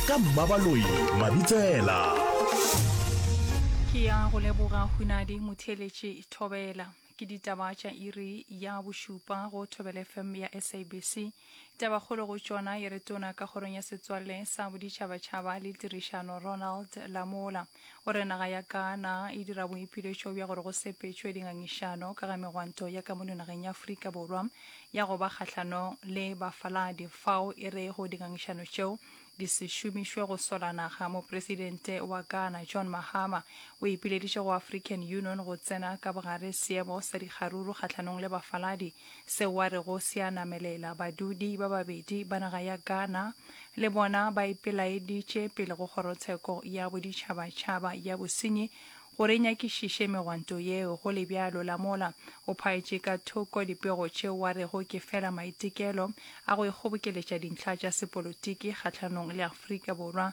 ka mmabaloi mabitsela ke ya go leboga hunadi motheeletše thobela ke ditaba tša iri ya bošupa go thobela fm ya sabc tabakgolo go tšona e re tona ka kgorong ya setswalle sa boditšhabatšhaba le tirišano ronald lamola O re naga ya Ghana e dira boipiletšo bja gore go sepetšwe dingangišano ka ga megwanto ya ka mono nageng ya Afrika Borwa ya go ba kgahlanong le bafaladi fao e rego dingangišano tšeo di se šomišwe go sola naga. Mopresidente wa Ghana John Mahama o ipileditše go African Union go tsena ka bogare seemo sa dikgaruru kgahlanong le bafaladi Seo a rego se a namelela badudi ba babedi ba naga ya Ghana, le bona ba ipelaeditše pele go Kgorotsheko ya Boditšhabatšhaba ya Bosenyi gore e nyakišiše megwanto yeo. Go le bjalo, Lamola o phaetše ka thoko dipego tšeo a rego ke fela maitekelo a go ikgobokeletša dintlha tša sepolotiki kgahlanong le Afrika Borwa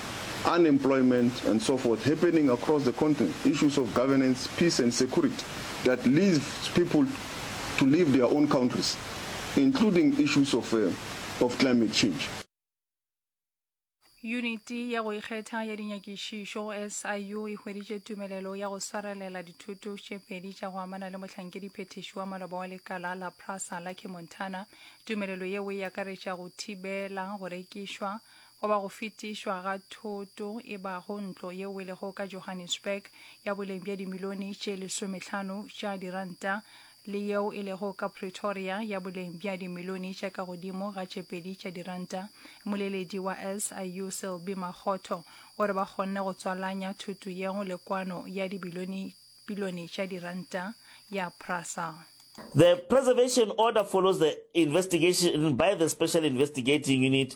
unemployment and so forth happening across the continent, issues of governance, peace and security that leaves people to leave their own countries, including issues of, uh, of climate change. Yuniti ya go ikgetha ya dinyakišišo, SIU, e hweditše tumelelo ya go swarelela dithoto tše pedi tša go amana le mohlankedi-phethiši wa maloba wa lekala la Prasa, Lucky Montana. Tumelelo yeo e akaretša go thibela go rekišwa, goba go fetišwa ga thoto e bago ntlo ye welego ka Johannesburg ya boleng bja dimilione tše lesomehlano tša diranta le yeo e lego ka Pretoria ya boleng bja dimilione tša ka godimo ga tše pedi tša diranta. Mmoleledi wa SIU Selby Makgotho o re ba kgonne go tswalanya thoto yeo le kwano ya dibilione bilione tša diranta ya Prasa. The preservation order follows the investigation by the Special Investigating Unit.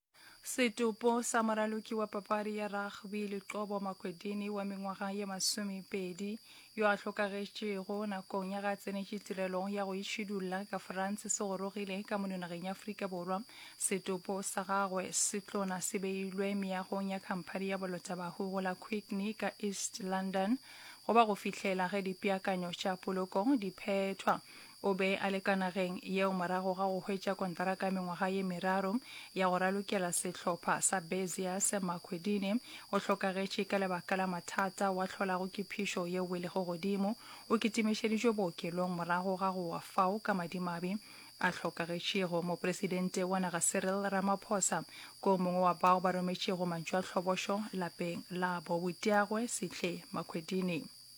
Setopo sa moraloki wa papadi ya rugby Liqobo Makwedini wa mengwaga ye masomepedi yo a hlokagetšego nakong ya ga tsenetše tirelong ya go itšhidulla ka France se gorogile ka mono nageng ya Afrika Borwa. Setopo sa gagwe se tlona se beilwe meagong ya khamphani ya bolotabahu go la Quickney ka East London go ba go fihlela ge dipeakanyo tša poloko di phethwa. O be a le ka nageng yeo morago ga go hwetša kontraka ya mengwaga ye meraro ya go ralokela sehlopha sa Beziers. Makhwedini o hlokagetše ka lebaka la mathata wa hlolago ke phišo ye welego godimo. O kitimišeditšwe bookelong morago ga go wa fao ka madimabe a hlokagetšego. Mopresidente wa naga Cyril Ramaphosa ke o mongwe wa bao ba rometšego mantšoatlhobošo lapeng labo. Boteagwe Sihle Makhwedini.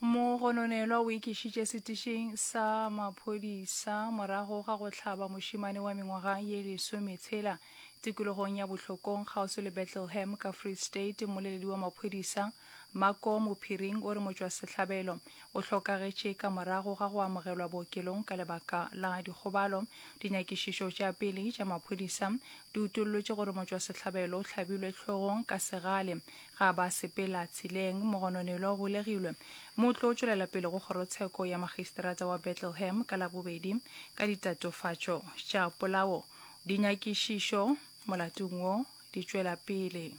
Mogononelwa o ikišitše setišing sa maphodisa morago ga go hlaba mošemane wa mengwaga ye lesometshela tikologong ya Bohlokong kgauswi le Bethleham ka Free State. Mmoleledi wa maphodisa, Mako Mophiring o re motšwasehlabelo o hlokagetše ka morago ga go amogelwa bookelong ka lebaka la dikgobalo. Dinyakišišo tša pele tša maphodisa di utollotše gore motšwasehlabelo o hlabilwe hlogong ka segale ge a ba sepela tseleng. Mogononelwa o golegilwe mme o tlo tšwelela pele go kgorotsheko ya makgiseterata wa Betlehem ka Labobedi ka ditatofatšo tša polao. Dinyakišišo molatong wo di tšwela pele.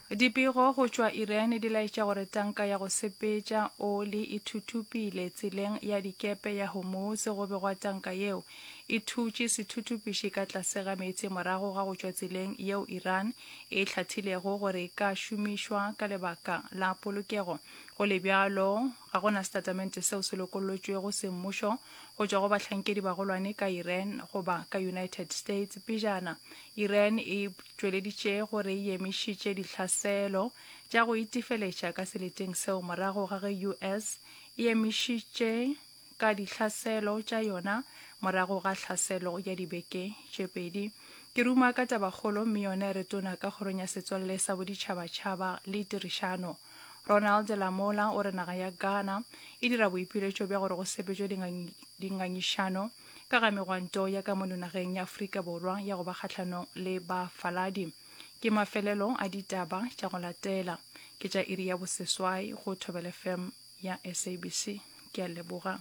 Dipego go tšwa Iran di laetša gore tanka ya go sepetša oli e thuthupile tseleng ya dikepe ya Hormuz go begwa tanka yeo e thutše sethuthupiši ka tlase ga meetse morago ga go tšwa tseleng yeo Iran e hlathilego gore e ka šomišwa ka lebaka la polokego. Go le bjalo, Ga go na setatamente seo se lokollotšwego semmušo go tšwa go bahlankedibagolwane ka Iran goba ka United States. Pejana, Iran e tšweleditše gore e emišitše dihlaselo tša go itefeletša ka seleteng seo morago ga ge US e emišitše ka dihlaselo tša yona morago ga hlaselo ya dibeke tše pedi. Ke ruma ka tabakgolo mme yona e re tona ka Kgorong ya Setswalle sa Boditšhabatšhaba le Tirišano. Ronald Lamola o re naga ya Ghana e dira boipiletšo bja gore go sepetšwe dingangišano ka ga megwanto ya ka mono nageng ya Afrika Borwa ya go ba kgahlanong le bafaladi. Ke mafelelo a ditaba tša go latela ke tša iri ya boseswai go Thobel FM ya SABC. Ke a leboga.